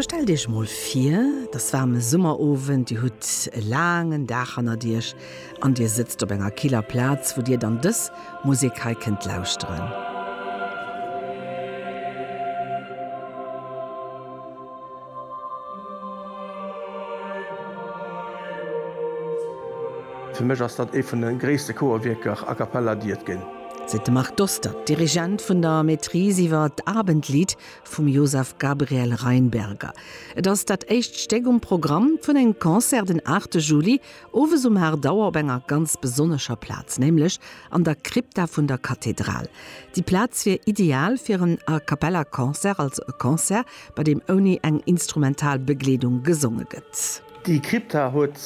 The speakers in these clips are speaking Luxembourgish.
Elo stellt Iech emol vir, et ass waarm e Summerowend, Dir hutt e laangen Dag hannert Iech an Dir sëtzt op enger killer Plaz, wou Dir dann dës Musek hei kënnt lauschteren. Fir mech ass dat ee vun de gréisste Chorwierker a cappella, déi et ginn. seet de Marc Dostert, Dirigent vun der Maîtrise iwwer d'Abendlied vum Josef Gabriel Rheinberger. Et ass dat éischt Stéck um Programm vun engem Concert den 8 Juli, owes um 8 Auer op enger ganz besonnescher Plaz, nämlech an der Krypta vun der Kathedral. Déi Plaz wier ideal fir en A Cappella Concert, also e Concert, bei deem ouni eng instrumental Begleedung gesonge gëtt. Déi Krypta huet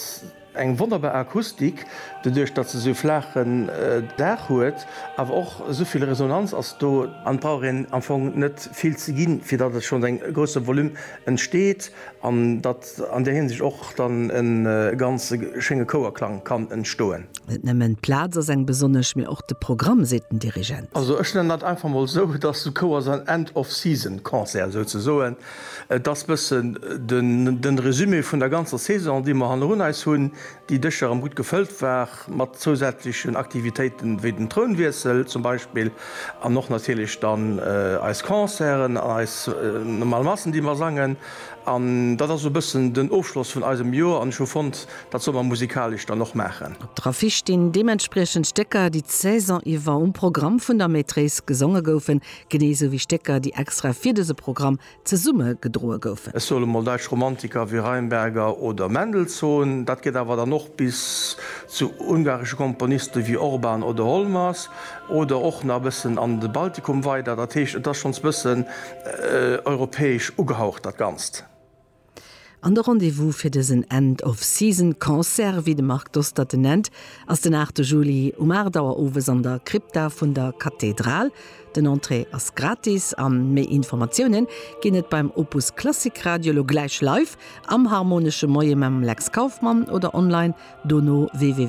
Eng wonnerbar Akustik doduerch dat se sou flaachen Daach huet, awer och souvill Resonanz ass do, an et brauch een am Fong net vill ze ginn fir dat et schonns en grousse Volume entsteet an dat an där Hinsicht och dann en ganz schénge Chouerklang kann entstoen. Net nëmmen d'Plaz ass eng besonnesch, mee och de Programm, seet den Dirigent. Also ech nennen dat einfach mol sou, et ass e Chouers an End-of-Season-Concert souzesoen. Et ass bëssen den Résumé vun der ganzer Saison, déi mer hannerun eis hunn, déi dëcher erëm gutt gefëllt war mat zousätzlechen Aktivitéiten, wéi den Trounwiessel zum Beispill an och natierlech dann eis Concerten an eis normal Massen, déi mer sangen. An dat ass esou bëssen den Ofschloss vun eisem Joer an ech hu fonnt, dat soll mer musikalesch dann och maachen. Op der Affiche stinn deementspriechend Stécker, déi d'Saison iwwer um Programm vun der Maîtrise gesonge goufen. Genee sou wéi Stécker, déi extra fir dëse Programm zesumme gedroe goufen. Ech soe mol däitsch Romantiker wéi Rheinberger oder Mendelssohn. Dat geet awer dann och bis zu ungaresche Komponiste wéi Orban oder Holmers oder och nach e bëssen an de Baltikum weider. Dat heescht, et ass schonns e bëssen europäesch ugehaucht, dat Ganzt. An de Rendez-vous fir dësen End of Season Concert, wéi de Marc Dostert en nennt, ass den 8 Juli um 8 Auer owes an der Krypta vun der Kathedral. Den Entrée ass gratis a méi Informatiounen ginn et beim Opus Klassik Radio, elo gläich live am Harmonesche Moie mam Lex Kauffmann, oder online dono www.